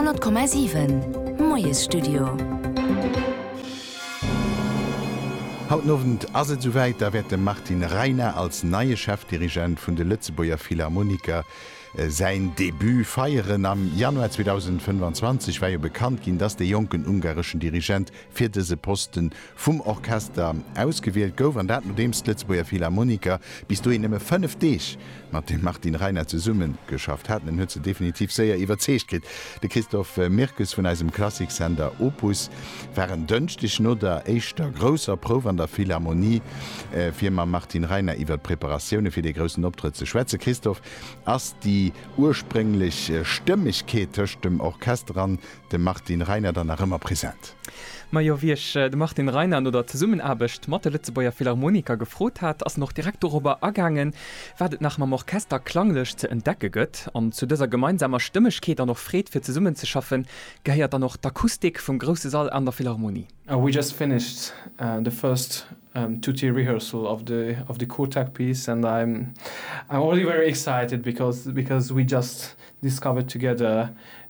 100,7 Moiesstudio. Haut den Owend ass et esouwäit, da wäert dem Martin Reiner als neie Chefdirigent vun de Lëtzebuerger Philharmoniker säin Debut feieren. Am Januar 2025 war jo bekannt ginn, dass de jonken ungareschen Dirigent fir dëse Posten vum Orchester ausgewielt gouf, an dat nodeems d'Lëtzebuerger Philharmoniker bis dohin nëmme fënnef Deeg mat dem Martin Reiner zesummegeschafft haten. En huet se definitiv séier iwwerzeegt kritt. De Christophe Mirkes vun eisem Klassiksender Opus war en Dënschdeg no der éischter grousser Prouf an der Philharmonie, fir mam Martin Reiner iwwer d'Preparatioune fir dee groussen Optrëtt ze schwätzen. Christophe, ass déi ursprénglech Stëmmegkeet tëscht dem Orchester an de Martin Reiner dann nach ëmmer present. Ma jo, wéi ech de Martin Reiner no der Zesummenaarbecht mat de Lëtzebuerger Philharmoniker gefrot hat, ass en och direkt dorobber agaangen, wat et nach mam Orchester klanglech ze entdecke gëtt. An zu dëser gemeinsamer Stëmmegkeet an och Freed fir zesummenzeschaffen, gehéiert dann och d'Akustik vum grousse Sall an der Philharmonie. We just finished the first tutti rehearsal of the of the Kottak piece and I'm I'm already very excited because because we just discovered together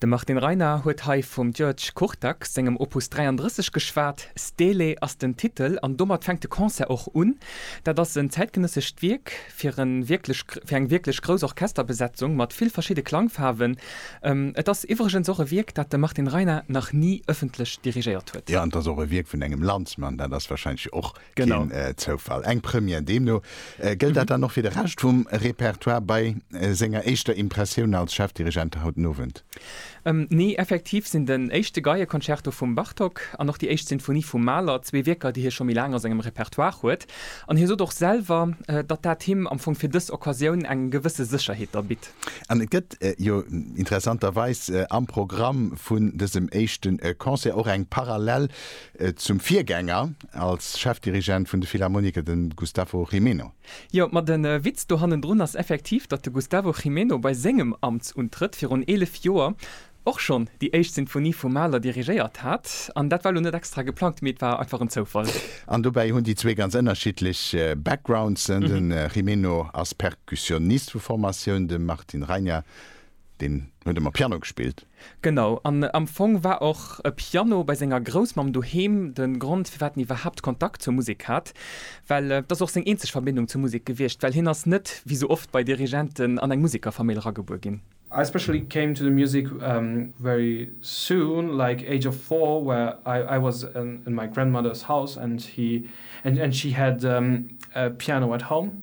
De Martin Reiner huet hei vum György Kurtak sengem Opus 33 geschwat. Stele ass den Titel an domat fänkt de Concert och un. Dat ass en zäitgenëssescht Wierk fir en wierklech, fir eng wierklech grouss Orchesterbesetzung mat vill verschidde Klangfaarwen. Et ass iwwregens och e Wierk, dat de Martin Reiner nach ni ëffentlech dirigéiert huet. Jo, an et ass och e Wierk vun engem Landsmann, dat ass wahrscheinlech och Keen Zoufall, eng Première. Deemno gëllt dat dann och fir de Rescht vum Repertoire. Bei senger éischter Impressioun als Chefdirigent haut den Owend? Nee, effektiv sinn den éischte Geieconcerto vum Bartók an och déi éischt Sinfonie vum Mahler zwee Wierker, déi hie scho méi laang a sengem Repertoire huet. An hie sot och selwer, datt dat him am Fong fir dës Occasioun eng gewësse Sécherheet da bitt. An et gëtt jo interessanterweis am Programm vun dësem éischte Concert och eng Parallel Et zum Virgänger als Chefdirigent vun de Philharmoniker, de Gustavo Gimeno. Jo, ma den Witz do hannendrun ass effektiv, datt de Gustavo Gimeno bei sengem Amtsuntrëtt virun 11 Joer och schonn déi éischt Sinfonie vum Mahler dirigéiert hat. An dat war lo net extra geplangt, mee et war einfach en Zoufall. An dobäi hunn déi zwee ganz ënnerschiddlech Backgrounds, de Gimeno ass Perkussionist vu Formatioun, de Martin Reiner deen huet ëmmer Piano gespillt. Genau, an am Fong war och e Piano bei senger Groussmamm doheem de Grond, firwat en iwwerhaapt Kontakt zur Musek hat. Well et ass och seng eenzeg Verbindung zur Musek gewiescht, well hien ass net, wéi sou oft bei Dirigenten, an eng Musekerfamill eragebuer ginn. I specially came to the music very soon, like age of four, where I was in my grandmother's house and she had a piano at home.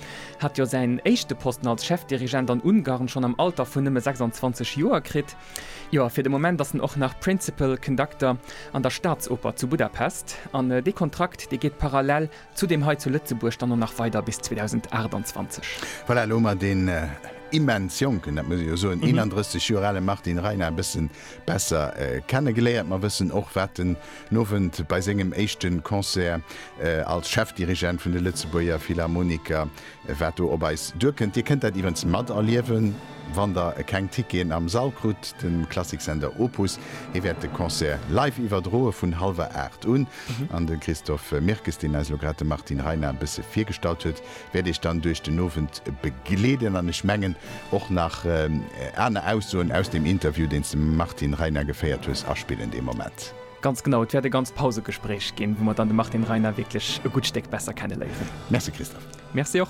hat jo säin éischte Posten als Chefdirigent an Ungarn schonn am Alter vun nëmme 26 Joer kritt. Jo, a fir de Moment ass en och nach Principal Conductor an der Staatsoper zu Budapest. An dee Kontrakt, dee geet parallel zu deem hei zu Lëtzebuerg dann och nach weider bis 2028. Voilà, elo hu mer deen immens jonken, dat muss ee jo soen, 31 Joer ale Martin Reiner e bëssen besser kenne geléiert. Mer wëssen och wat den Owend bei sengem éischte Concert als Chefdirigent vun de Lëtzebuerger Philharmoniker, wat do op eis duerkënnt. Dir kënnt dat iwwens materliewen, wann der keng Ticketen am Sall krut. De Klassiksender Opus, hee wäert de Concert live iwwerdroe vun hallwer 8 un. An de Christophe Mirkes, deen eis elo grad de Martin Reiner e bësse virgestallt huet, wäert iech dann duerch den Owend begleeden an ech mengen och nach aner Aussoen aus dem Interview, deen s de mam Martin Reiner geféiert hues, aspillen dee Moment. Ganz genau, et wäert e ganz Pausegespréich ginn, wou mer dann de Martin Reiner wierklech e gutt Stéck besser kenneléieren. Merci Christophe. Merci och.